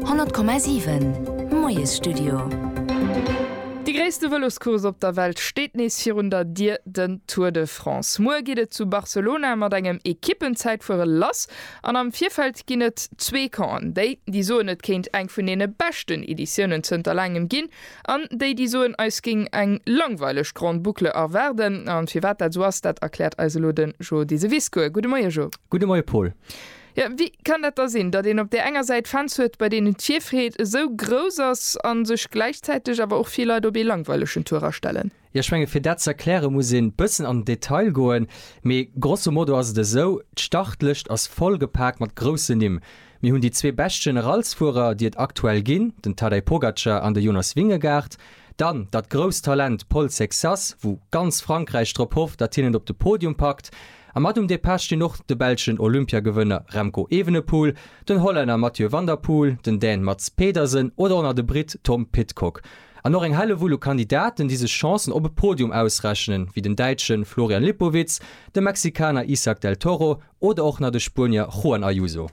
100,7 Moiesstudio. Dee gréisste Vëloscourse op der Welt steet nees virun der Dier, den Tour de France. Muer geet et zu Barcelona mat engem Ekippenzäitfuere lass an am Virfeld ginn et zwee Campen, déi, déi soen et kéint eng vun deene beschten Editiounen zënter laangem ginn an déi, déi soen eis géing eng langweileg Grande Boucle erwaarden. A firwat dat esou ass, dat erkläert eis elo de Jo Deseviscourt. Gudde Moie Jo. Gudde Moie Paul. Jo, wéi kann dat da sinn, datt een op där enger Säit Fans huet, bei deenen d'Virfreed esou grouss ass a sech gläichzäiteg awer och vill Leit op ee langweilegen Tour astellen? Jo, ech menge fir dat ze erkläre muss ee bëssen an den Detail goen, mee grosso modo ass et esou, d'Startlëscht ass voll gepaakt mat groussen Nimm. Mir hunn déi zwee bescht Generalsfuerer, déi et aktuell ginn, den Tadej Pogacar an de Jonas Vingegaard, Dann datt grousst Talent Paul Sexas, wou ganz Frankräich drop hofft, datt hien et op de Podium packt. A mat um Depart stinn och de belschen Olympiagewënner Remco Evenepoel, den Hollänner Mathieu van der Poel, den Dän Mads Pedersen oder och nach de Britt Tom Pidcock. An och eng Hellewull u Kandidaten, déi sech Chancen op e Podium ausrechnen, wéi den Däitschen Florian Lipowitz, de Mexikaner Isak del Toro Oder och nach de Spuenier Juan Ayuso.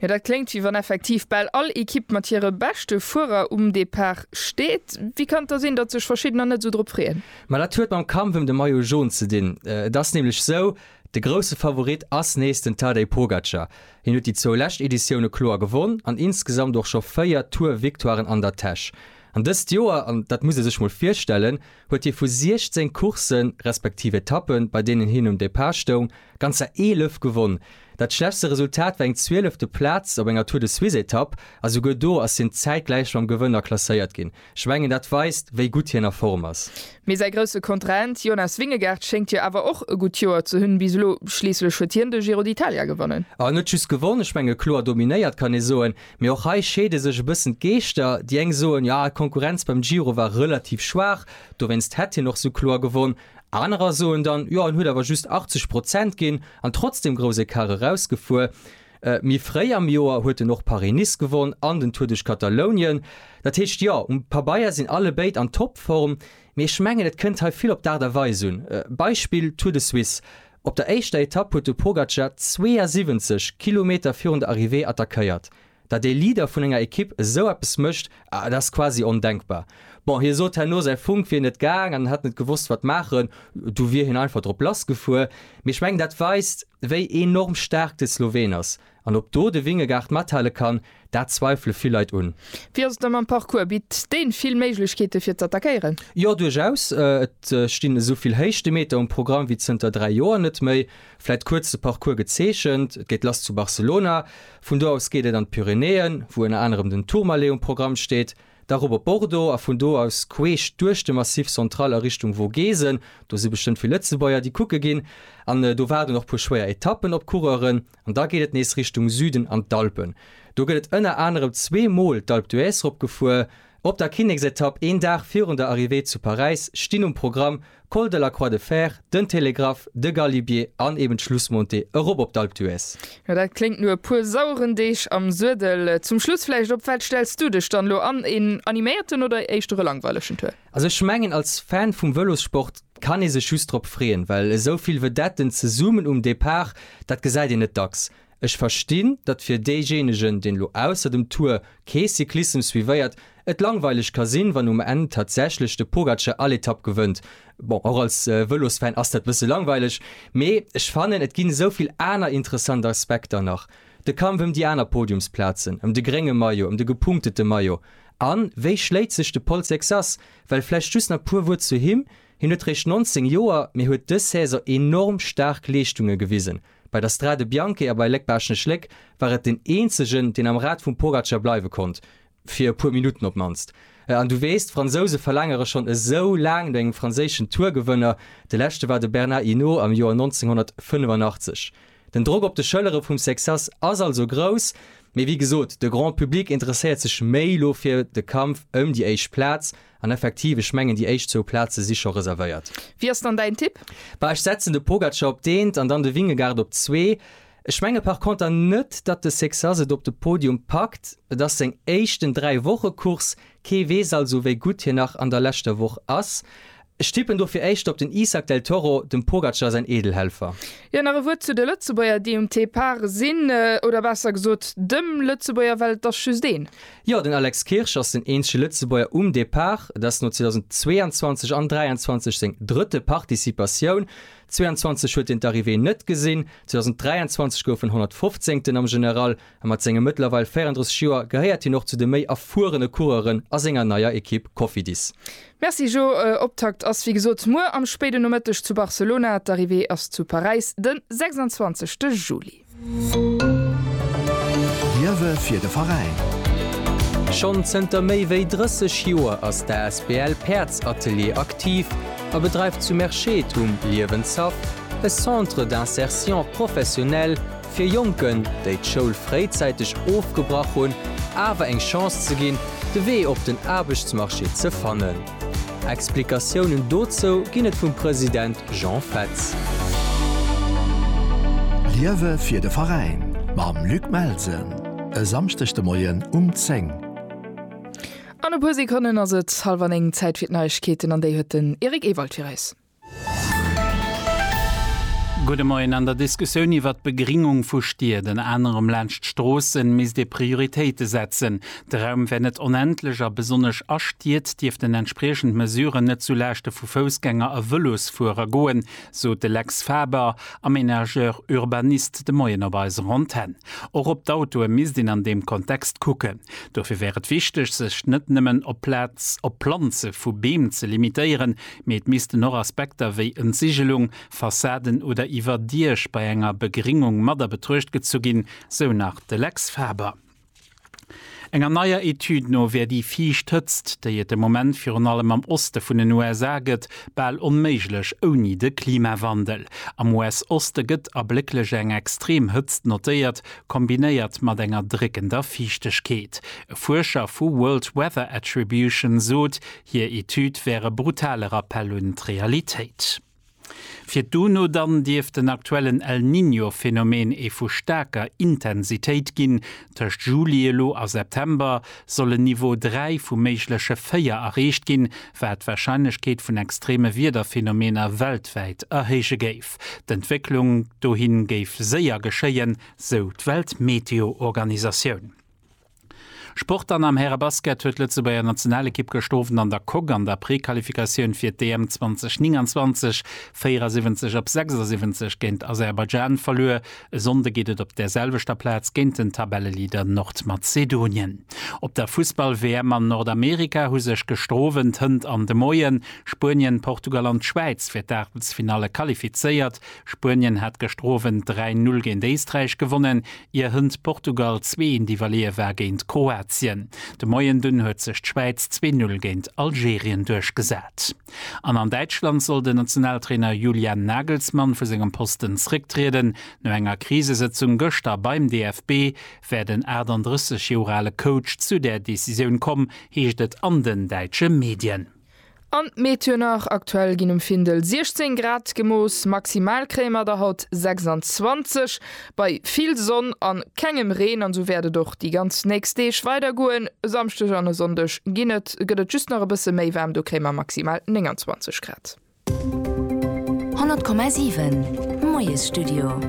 Jo, dat kléngt wéi wann effektiv bal all Ekipp mat hire beschte Fuerer um Depart steet. Wéi kann et da sinn, datt sech verschiddener net esou drop freeën? Ma dat huet mam Kampf ëm de Maillot Jaune ze dinn. Et ass nämlech esou, de grousse Favorit ass nees den Tadej Pogacar. Hien huet déi zwou lescht Editioune kloer gewonn an insgesamt och scho 4 Tour-Victoiren an der Täsch. An dëst Joer, an dat muss ee sech mol virstellen, huet hie vu 16 Courssen, respektiv Etappen, bei deenen hien um Depart stoung, ganzer 11 gewonn. Dat schlechtste Resultat war eng zwielefte Plaz op enger Tour-de-Suisse-Etapp, a souguer do ass hien zäitgläich mam Gewënner klasséiert ginn. Ech mengen, dat weist, wéi gutt hien a Form ass. Mee säi grousse Kontrahent Jonas Vingegaard schéngt jo awer och e gutt Joer ze hunn bis elo. Schliisslech huet hien de Giro d'Italia gewonnen. En huet just gewonn, ech menge kloer dominéiert, kann ee soen. Mee och hei scheede sech e bëssen d'Geeschter, déi eng soen, jo d'Konkurrenz beim Giro war relativ schwaach, dowéinst hätt hien och sou kloer gewonn. Anerer soen dann, jo en huet awer just 80 Prozent ginn an trotzdeem grouss Ecart erausgefuer. Méi fréi am Joer huet en och Paris-Nice gewonn an den Tour duerch Katalounien. Dat heescht, jo um Pabeier sinn allebéid an Topform, mee ech mengen et kënnt hei vill op d'Aart a Weis un. Beispill Tour de Suisse. Op der éischter Etapp huet de Pogacar 72 Kilometer virun der Arrivée attackéiert. Datt ee Leader vun enger Ekipp esou eppes mécht, dat ass quasi ondenkbar. Bon, hie sot herno, säi Funk wier net gaang an en hätt net gewosst, wat maachen. Du wier hien einfach drop lass gefuer. Mee ech mengen, dat weist, wéi enorm staark de Sloween ass. An ob do de Wingegaard mathale kann, dat zweifele vill Leit un. Wéi ass et da mam Parcours? Bitt deen vill Méiglechkeeten fir z'attackéieren? Jo, duerchaus. Et stinn esou vill Héichtemeter um Programm wéi zënter 3 Joer net méi. Vläit kuerz de Parcours gezeechent, et geet lass zu Barcelona, vun do aus geet et an d'Pyrenäen, wou ënner anerem den Tourmalet um Programm steet, da rop op Bordeaux a vun do aus queesch duerch de Massif Central a Richtung Vogesen. Do si bestëmmt vill Lëtzebuerger, déi kucke ginn. An do waarden och puer schwéier Etappen op d'Coureuren. An da geet et nees Richtung Süden an d'Alpen. Do gëtt et ënner anerem zwee Mol d'Alpe d'Huez ropgefuer. Op der Kinneksetapp, een Dag virun der Arrivée zu Paräis, stinn um Programm, Col de la Croix de Fer, den Télégraphe, de Galibier an eben d'Schlussmontée erop op d'Alpe d'Huez. Jo, dat kléngt no e puer saueren Deeg am Suedel. Zum Schluss vläicht, op wat stells du dech dann elo an, een animéierten oder éischter e langweilegen Tour? Also ech mengen als Fan vum Vëlossport kann ee sech just drop freeën, well esou vill Vedetten zesummen um Depart, dat gesäit een net dacks. Ech verstinn, datt fir deejéinegen, deen elo ausser dem Tour kee Cyclissem suivéiert, et langweileg ka sinn, wann um Enn tatsächlech de Pogacar all Etapp gewënnt. Bon, och als Vëlosfan ass dat bësse langweileg, mee ech fannen, et ginn esou vill aner interessant Aspekter nach, de Kampf ëm déi aner Podiumsplazen, ëm de grénge Maillot, ëm de gepunktete Maillot, An wéi schléit sech de Paul Sexas? Well vläicht just nach puer Wuert zu him, Hien huet réischt 19 Joer, mee huet dës Saison enorm staark Leeschtunge gewisen. Bei der Strade Bianche a bei Léck-Baaschtnech-Léck war et den eenzegen, deen am Rad vum Pogacar bleiwe konnt, fir e puer Minutten op d'mannst. An du weess, d'Fransouse verlaangere schonn esou laang no engem franséischen Tour-Gewënner. De leschte war de Bernard Hinault am Joer 1985. Den Drock op de Schëllere vum Sexas ass also grouss, mee wéi gesot, de Grand Public interesséiert sech méi elo fir de Kampf ëm déi éischt Plaz. An effektiv, ech mengen, déi éischt zwou Plaze si scho reservéiert. Wie ass dann däin Tipp? Bah, ech setzen de Pogacar op d'eent an dann de Vingegaard op zwee. Ech menge par conter net, datt de Sexas et op de Podium packt. Et ass seng éischten Dräi-Woche-Course, kee weess also, wéi gutt hien nach an der leschter Woch ass. Ech tippen dofir éischter op den Isak del Toro, dem Pogacar säin Eedelhelfer. Jo, nach e Wuert zu de Lëtzebuerger, déi um Depart sinn. Oder besser gesot, dem Lëtzebuerger, well et ass just een. Jo, den Alex Kirsch ass den eenzege Lëtzebuerger um Depart. Et ass no 2022 an 23 seng drëtte Participatioun. 22 huet hien d'Arrivée net gesinn, 2023 gouf en 115. am General. a mat senge mëttlerweil 34 Joer gehéiert hien och zu de méi erfuerene Coureuren a senger neier Ekipp Cofidis. Merci Jo, Optakt ass wéi gesot muer am spéiden Nomëtteg zu Barcelona, d'Arrivée ass zu Paräis den 26 te Juli. Liewe fir de Veräin! Schonn zënter méi wéi 30 Joer ass d'asbl Päerds Atelier aktiv a bedreift zu Merschette um Liewenshaff e Centre d'insertion professionnelle, Fir Jonken, déi d'Schoul fréizäiteg ofgebrach hunn, awer eng Chance ze ginn, de Wee op den Aarbechtsmarché ze fannen. Explikatiounen dozou ginn et vum President Jean Fetz. Liewe fir de Veräin mam Luc Melsen, e Samschdeg de Moien um 10. An e puer Sekonnen ass et halwer néng. Zäit fir d'Neiegkeeten an déi huet den Eric Ewald fir eis. Gudde Moien. An der Diskussioun iwwert d'Begringung vu Stied, ënner anerem laanscht Stroossen, misst ee Prioritéite setzen. De Raum wär net onendlech a besonnesch a Stied dierften entspriechend Mesuren net zu Laaschte vu Foussgänger a Vëlosfuerer goen, sot de Lex Faber, Aménageur urbaniste, de Moien op eiser Antenn. Och op d'Autoe misst een an deem Kontext kucken. Dofir wär et wichteg, sech net nëmmen op Plaz, op Planze vu Beem ze limitéieren, Mee et missten och Aspekter wéi Entsigelung, Fassaden oder Iwwerdiech bei enger Begringung mat a Betruecht gezu ginn, sou nach de Lex Faber. Enger neier Etüd no wär déi fiicht Hëtzt, déi et de Moment virun allem am Oste vun den USA gëtt, bal onméiglech ouni de Klimawandel. Am US-Oste gëtt ablécklech eng extrem Hëtzt notéiert, kombinéiert mat enger dréckender Fiichtegkeet. E Fuerscher vu World Weather Attribution sot, Hir Etüd wär e brutale Rappell un d'Realitéit. Fir d'UNO dann dierft den aktuellen El Niño Phenomen ee vu staarker Intensitéit ginn. Tëscht Juli elo a September soll en Niveau 3 vu méigleche 4 erreecht ginn, wat d'Warscheinlechkeet vun extreme Wiederphenomener weltwäit erhéije géif. D'Entwécklung dohin géif séier geschéien, sou d'Weltmeteoorganisatioun. Sport An am Härebasket huet d'Lëtzebuerger Nationalekipp gëscht Owend an der Coque an der Prequalifikatioun fir d'EM 2029 74 op 76 géint Aserbaidschan verluer. E Sonnde geet et op där selwechter Plaz géint den Tabelleleader Nordmazedonien. Op der Fussball-WM an Nordamerika hu sech gëscht Owend, hënt an de Moien Spuenien, Portugal an d'Schwäiz fir d'Aachtelsfinalle qualifizéiert. Spuenien hat gëscht Owend 3, 0 géint Éisträich gewonnen. ier hënt Portugal zwee een iwwerleeë war géint Kroatien. De Moien dunn huet sech d'Schwäiz zwee Null géint Algerien duerchgesat. An an Däitschland soll den Nationaltrainer Julian Nagelsmann vu sengem Posten zrécktrieden. No enger Krisesëtzung gëschter beim DFB wär den 38 Joer ale Coach zu där Decisioun komm, heescht et an den däitsche Medien. An d'Méteo nach, Aktuell ginn um Findel 16 Grad gemooss, maximal kréie mer der haut 26, bei vill Sonn a kengem Reen. An esou wäert et och déi ganz nächst Deeg weider goen, e Samschdeg an e Sonndeg gëtt et just nach e bësse méi waarm, do kréie mer maximal 29 Grad. 100,7 Moiesstudio.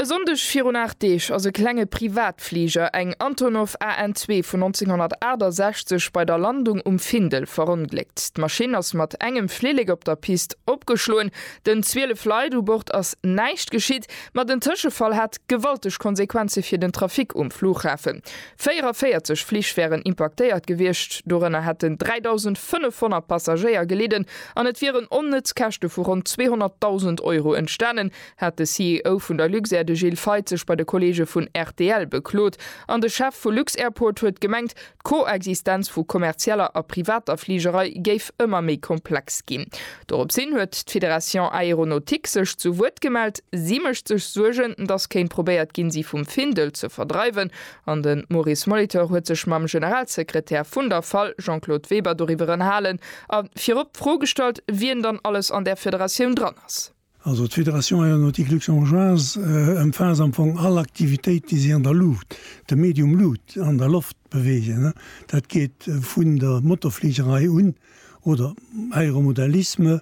E Sonndeg virun aacht Deeg ass e klenge Privatfliger, eng Antonov AN zwee vun 1968, bei der Landung um Findel verongléckt. D'Maschinn ass mat engem Flillek op der Pist opgeschloen. Den 12 Leit u Bord ass näischt geschitt, ma den Tëschefall hat gewalteg Konsequenze fir den Trafic um Flughafen. 44 Flich wären impaktéiert gewiescht, dorënner hätten 3.500 Passagéier gelidden an et wieren onnëtz Käschte vu ronn 200.000 Euro entstanen, hat de CEO vun der Luxair, de Gilles Feith, sech bei de Kolleege vun rtl beklot. An de Chef vu Lux-Airport huet gemengt, d'Koexistenz vu kommerzieller a privater Fligerei géif ëmmer méi komplex ginn. Dorops hin huet d'Fédération Aéronautique sech zu Wuert gemellt. Si mécht sech Suergen, datt kéint probéiert ginn, si vum Findel ze verdreiwen. An de Maurice Molitor huet sech mam Generalsekretär vun der fal, Jean-Claude Weber, doriwwer ënnerhalen a virop d'Fro gestallt, wien dann alles an där Federatioun dran ass. Also d'Fédération aéronautique luxembourgeoise ëmfaasst am Fong all Aktivitéit, déi sech an der Luucht, dem Medium Luut, an der Loft beweegen. Dat geet vun der Motorfligerei un, oder Aéromodellisme,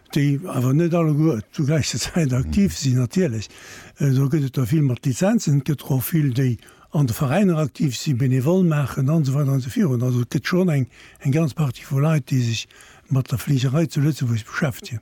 déi awer net alleguer zur gläicher Zäit aktiv sinn, natierlech, do gëtt et der vill mat Lizenzen, et gëtt der och vill, déi an de Veräiner aktiv si, benevole maachen an esou weider an esou virun. Also et gëtt schonn eng eng ganz Partie vu Leit, déi sech mat der Fligerei zu Lëtzebuerg beschäftegen.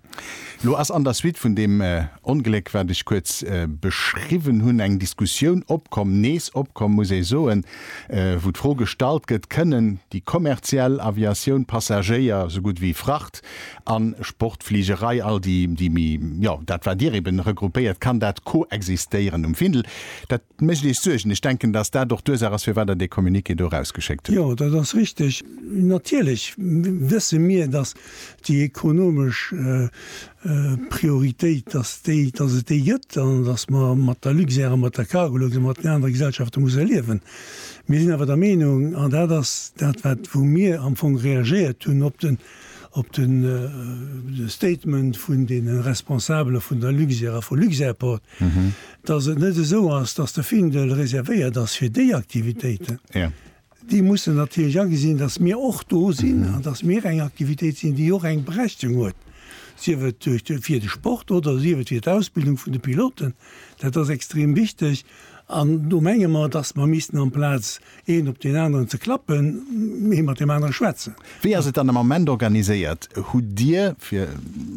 Elo ass an der Suite vun deem Ongléck, wat ech kuerz beschriwwen hunn, eng Diskussioun opkomm, nees opkomm, muss ee soen, wou d'Fro gestallt gëtt, Kënnen déi kommerziell Aviatioun Passagéier esou gutt wéi Fracht An Sportfligerei, all déi, déi méi, jo, dat wat Dir eben regroupéiert, kann dat koexistéieren um Findel? Dat mécht Iech Suergen? Ech denken, datt dat och d'Ursaach ass, firwat Der dee Communiqué do erausgeschéckt hutt. Jo, dat ass richteg. Natierlech wësse mir, datt déi ekonomesch Prioritéit, datt déi, datt et déi gëtt an datt mer mat der Luxair a mat der Cargolux a mat den anere Gesellschafte musse liewen. Mir sinn awer der Meenung, an dat ass dat wat wou mir am Fong reagéiert hunn op den, op de Statement vun de Responsabele vun der Luxair a vu Luxairport, datt et net esou ass, datt de Findel reservéiert ass fir déi Aktivitéiten. Déi mussen natierlech agesinn, datt mir och do sinn an datt mir eng Aktivitéit sinn, déi och eng Berechtigung huet, sief et fir de Sport oder sief et fir d'Ausbildung vun de Piloten. Dat ass extrem wichteg an do menge mer, datt mer missten amplaz Een op deen aneren ze klappen, ee mat deem anere schwätzen. Wéi ass et dann am Ament organiséiert? Hutt Dir, fir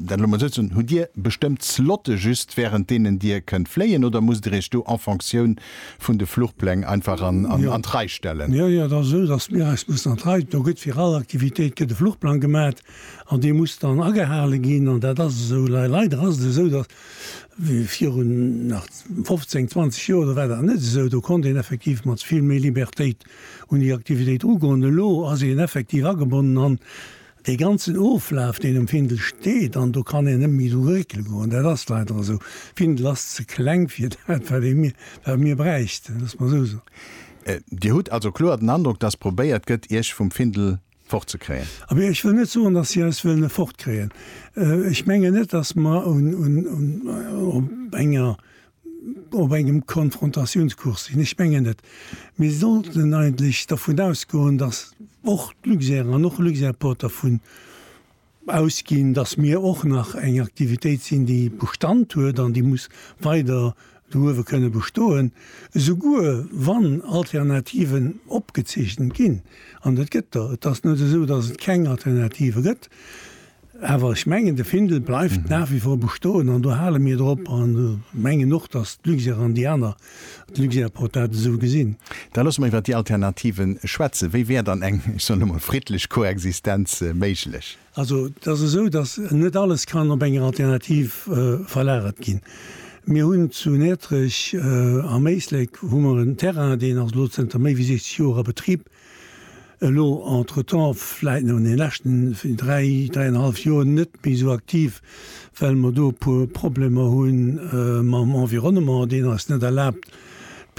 dat elo emol esou ze soen, hutt Dir bestëmmt Slotte just wärend deenen Dir kënnt fléien oder musst Dir Iech do en Fonctioun vun de Fluchpläng einfach an d'Rei stellen? Jo, jo, et ass esou, datt mir eis mussen an d'Rei, do gëtt fir all Aktivitéit gëtt e Fluchplang gemat an dee muss dann agehale ginn an dat ass esou. Leider ass et esou, datt Viru nach 15, 20 Joer, do war dat net esou. Do konnt een effektiv mat vill méi Libertéit un déi Aktivitéit ugoen. Elo ass een effektiv agebonnen an dee ganzen Oflaf, deen um Findel steet, an do kann een net méi dru réckele goen. Dat ass leider esou. Findel ass ze kleng fir dat, wat ee mir, wat mir bräichten, loosse mer esou soen. Dir hutt also kloer den Androck, dass probéiert gëtt, Iech vum Findel fort ze kréien. Abee, ech wëll net soen, datt si eis wëllen fort kréien. Ech mengen net, datt mer op engem Konfrontatiounskurs sinn. Ech mengen net. Mir sollten eigentlech dervun ausgoen, datt och d'Luxair an och Luxairport dervun, ausginn, dass mir och nach eng Aktivitéit sinn, déi Bestand huet an déi muss weider douewe kënne bestoen, esouguer wann Alternativen opgezeechent ginn, an et gëtt der. Et ass net esou, dass et keng Alternative gëtt, awer ech mengen, de Findel bleift nach wie vor bestoen an do hale mir drop an mengen och, dass d'Luxair an déi aner De Luxair huet dat esou gesinn. Da loosse mer iwwert déi Alternative schwätzen. Wéi wär dann eng, ech soen elo mol, friddlech Koexistenz méiglech? Also, et ass esou, datt net alles kann op eng Alternativ verlagert ginn. Mir hunn zu Näertrech am Éislek hu mer en Terrain, deen ass elo zënter méi wéi 60 Joer a Betrib, Elo entretemps, vläit an den leschten dräi, dräienhallef Joer net méi esou aktiv, well mer do e puer Problemer hu mam Environnement, deen eis net erlaabt,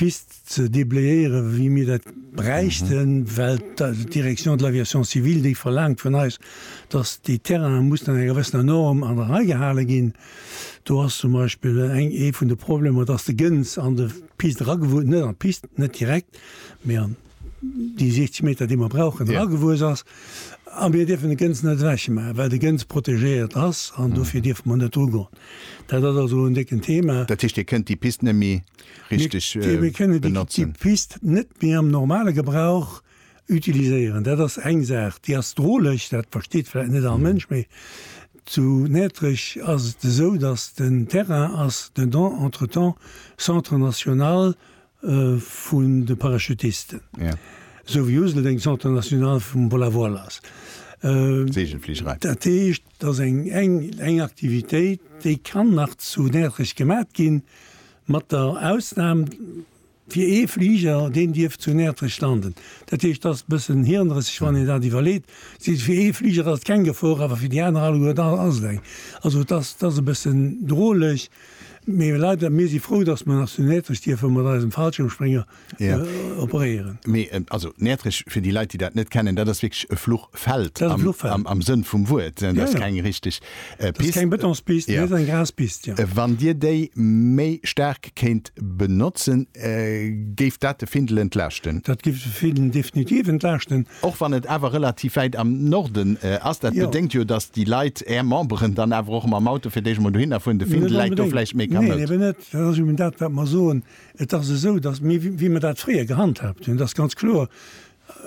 d'Pist ze déblayéieren, wéi mir dat bräichten, well d'Direction de l'aviation civile déi verlaangt vun eis, dass déi Terrainen mussen enger gewëssener Norm an der Rei gehale ginn. Do ass zum Beispill eng, ee vun de Problemer, dass de Gëns an de Pist eragewunnt, net an d'Pist, net direkt, mee an déi 60 Meter, déi mer brauchen, eragewuess ass. A mir dierfen de Gëns net ewechmaachen, well de Gëns protegéiert ass an dofir dierfe mer net drugoen. Dat ass also en décken Thema. Dat heescht, Dir kënnt déi Pist net méi richteg benotzen? Mir kënnen déi Pist net méi am normale Gebrauch utiliséieren. Dat ass eng Saach. Déi ass droleg, dat versteet vläicht net all Mënsch, mee zu Näertrech ass et esou, datt den Terrain ass dedans entretemps Centre national vun de Parachutisten, esou wéi Useldeng d'Centre national vum Vol à Voile ass. Dat heescht, et ass eng Aktivitéit, déi kann nach zu Näertrech gemat ginn, mat der Ausnahm fir ee Fliger, deen dierf zu Näertrech landen. Dat heescht, et ass e bëssen hirnrësseg, wann een dat iwwerleet. Fir ee Fliger ass et keng Gefor, awer fir déi aner alleguer ass et eng. Also et ass e bëssen droleg. Mee leider, mir si frou, dass mer nach zu Näertrech dierfe mat eisem Fallschirmsprénger operéieren. Mee also, Näertrech, fir déi Leit, déi dat net kennen, dat ass wierklech e Fluchfeld am Sënn vum Wuert. Dat ass keng richteg Pist. Dat ass keng Betonspist, mee et ass eng Graspist. Wann Dir déi méi staark kéint benotzen, géif dat de Findel entlaaschten? Dat géif de Findel definitiv entlaaschten. Och wann et awer relativ wäit am Norden ass. Dat bedéngt jo, datt déi Leit, är Memberen, dann awer och mam Auto fir d'éischt emol dohinner fueren. De Findel läit do vläicht méi kamoud. Neen, eben net. Dat ass eben dat, wat mer soen. Et ass esou, datt mir, wéi mer dat fréier gehandhaabt hunn, et ass ganz kloer,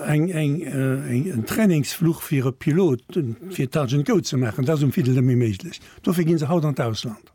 eng, eng, en Trainingsfluch fir e Pilot, fir Touch and Go ze maachen, dat ass um Findel net méi méiglech. Dofir gi se haut an d'Ausland.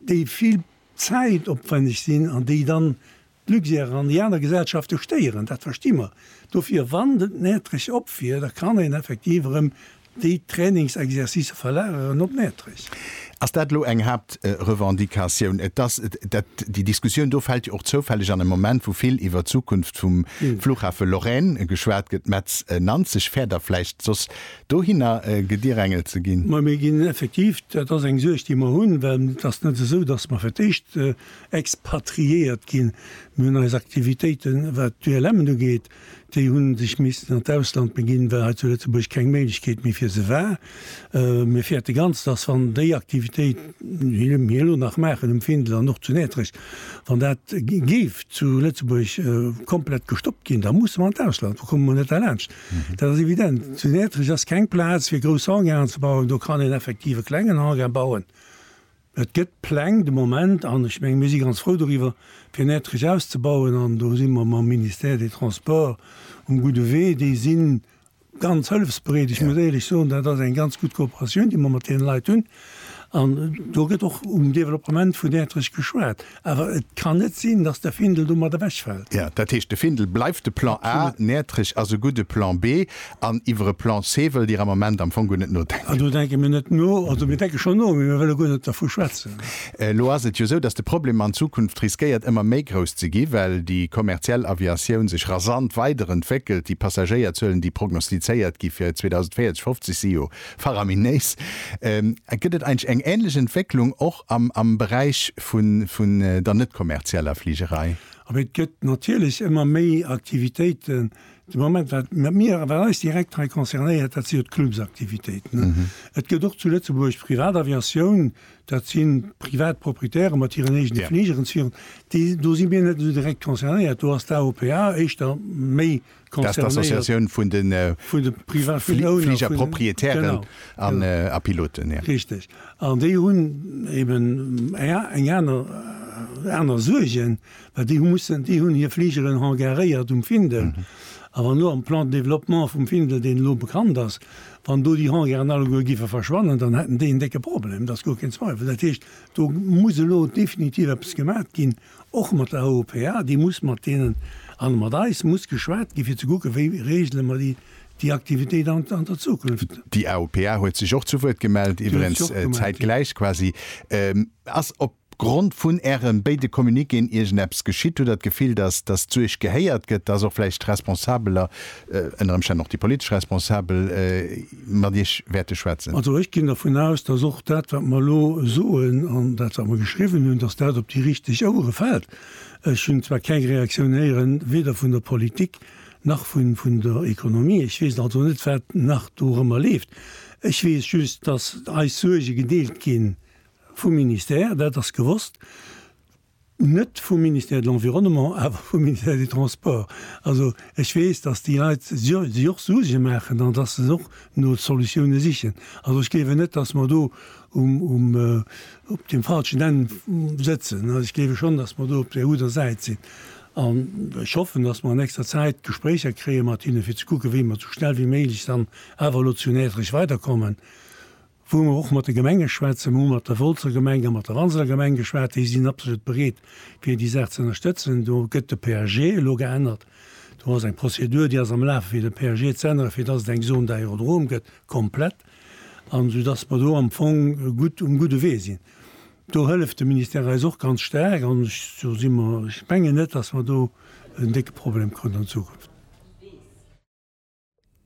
déi vill Zäit opwenneg sinn an déi dann d'Luxair an déi aner Gesellschafte stéieren, dat versti mer. Dofir, wann et Näertrech op wier, da kann een effektiv erëm déi Trainingsexercicë verlageren op Näertrech. Ass dat elo eng Haaptrevendicatioun? Et ass dat. Déi Diskussioun do fält jo och zoufälleg an e Moment, wou vill iwwer d'Zukunft vum Flughafe Lorraine geschwat gëtt. Metz, Nanzeg fäert a vläicht soss dohinner gedierängelt ze ginn. Mä mir ginn effektiv, dat ass eng Suerg, déi mer hunn, well et ass net esou, datt mer fir d'éischt expatriéiert ginn. Mir hunn eis Aktivitéiten, wat d'ULMen ugeet, déi hu sech missen an d'Ausland beginn, well hei zu Lëtzebuerg keng Méiglechkeet méi fir se war. Mir fäerte ganz, datt, wann déi Aktivitéit, déi mir elo nach maachen um Findel an och zu Nätrech, wann dat géif zu Lëtzebuerg komplett gestoppt ginn, da musse mer an d'Ausland, do komme mer net derlaanscht. Dat ass evident. Zu Näertrech ass keng Plaz fir grouss Hangaren ze bauen. Do kann een effektiv e klengen Hangar bauen. Et gëtt Pläng de Moment, an ech mengen, mir si ganz frou doriwwer, fir Näertrech auszebauen. An do si mer mam Ministère des Transports um gudde Wee. Déi si ganz hëllefsbereet. Ech muss éierlech soen, dat ass eng ganz gutt Kooperatioun, déi mer mat deene Leit hunn. An do gëtt och um Developpement vun Ätterich geschwat. Awer et kann net sinn, datt de Findel domat ewechfält. Ja, dat heescht, de Findel bleift de Plan A, Näertrich ass e gudde Plan B, an iwwer e Plan C wëllt Dir am Ament am Fong guer net nodenken. Ah, do denke mir net no. Also mir denke schonn no, mee mir wëlle guer net dervu schwätzen. Elo ass et jo esou, datt de Problem an Zukunft riskéiert ëmmer méi grouss ze gi well déi kommerziell Aviatioun sech rasant weiderentwéckelt. Déi Passagéierzuelen, déi prognostizéiert gi fir 2040, 50 si jo Faraminés. Gëtt et eigentlech eng ähnlech Entwécklung och am Beräich vun der net-kommerzieller Fligerei? Et gëtt natierlech ëmmer méi Aktivitéiten. De Moment, wat mir, wat eis direkt hei concernéiert, dat si jo d'Clubsaktivitéiten. Et gëtt och zu Lëtzebuerg d'Privataviatioun, dat si privat Proprietäre mat hiren eegene Fligeren, déi, do si mir net esou direkt concernéiert, do ass d'AOPA éischter méi. Dass d'Associatioun vun de Fligerpropriétairen a Piloten. Richteg. An déi hunn eben eng aner, aner Suergen, well déi hu mussen, déi hunn hir Fligeren hangaréiert um Findel. A wann elo am Plan de développement vum Findel, deen elo bekannt ass, wann do déi Hangaren alleguer géife verschwannen, dann hätten déi en décke Problem, dat ass guer keen Zweiwel. Dat heescht, do muss elo definitiv eppes gemat ginn. Och mat der OPA, déi muss mat deenen an mat eis muss geschwat ginn, fir ze kucken, wéi regele mer déi, déi Aktivitéit an, an der Zukunft. Déi OPA huet sech och zu Wuert gemellt, iwwerens zäitgläich quasi. Ass op Grond vun Ären béide Communiquéen iergend eppes geschitt? Hutt Der d'Gefill, dass, dass d'Suerg gehéiert gëtt, dass och vläicht d'Responsabeler, ënner Ëmstänn och déi politesch Responsabel, mat Iech wäerte schwätzen. Also ech ginn dervun aus, dass och dat, wat mer elo soen, an dat, wat mer geschriwwen hunn, dass dat op déi richteg Ouere fält. Ech hunn zwar keng Reaktioun héieren, weder vun der Politik nach vun der Ekonomie. Ech weess also net, wat nach dorëmmer leeft. Ech weess just, dass eis Suerge gedeelt gi vu Ministère, dat ass gewosst. Net vum Ministère de l'Environnement, awer vum Ministère des Transports. Also ech weess, datt déi Leit sech och Suerge maachen an datt se och no Solutioune sichen. Also ech gleewen net, datt mer do op deem falschen Enn sëtzen. Ech gleewe schonn, datt mer do op där gudder Säit sinn. An ech hoffen, datt mer an nächster Zäit Gespréicher kréie mat hinne fir ze kucken, wéi mer esou schnell wéi méiglech dann awer elo zu Näertrech weiderkommen. wou mer och mat de Gemenge schwätzen, mer hu mat der Wolzer Gemeng a mat der Walser Gemeng geschwat, déi sinn absolut bereet fir déi Saach ze ënnerstëtzen. Do gëtt de PAG elo geännert, do ass eng Prozedur déi ass am Laf fir de PAG ze änneren, fir datt et eng Zone d'aérodrome gëtt komplett an esou datt mer do am Fong gutt um gudde Wee sinn. Do hëlleft de Ministère eis och ganz staark an ech do si mer, ech mengen net, datt mer do en décke Problem kruten an Zukunft.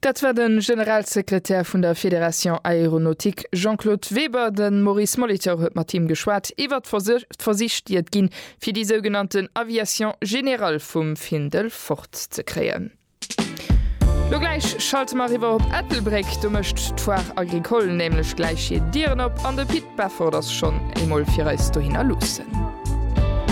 Dat war de Generalsekretär vun der Fédération Aéronautique Jean-Claude Weber. De Maurice Molitor huet mat him geschwat iwwer d'Versich, déi et ginn, fir déi sougenannten Aviation générale vum Findel fort ze kréien. Lo gläich schalte mer eriwwer op Ettelbréck. Do mécht d'Foire Agricole nämlech gläich hir Dieren op an de Pit Beffort ass schonn eemol fir eis dohinner luussen.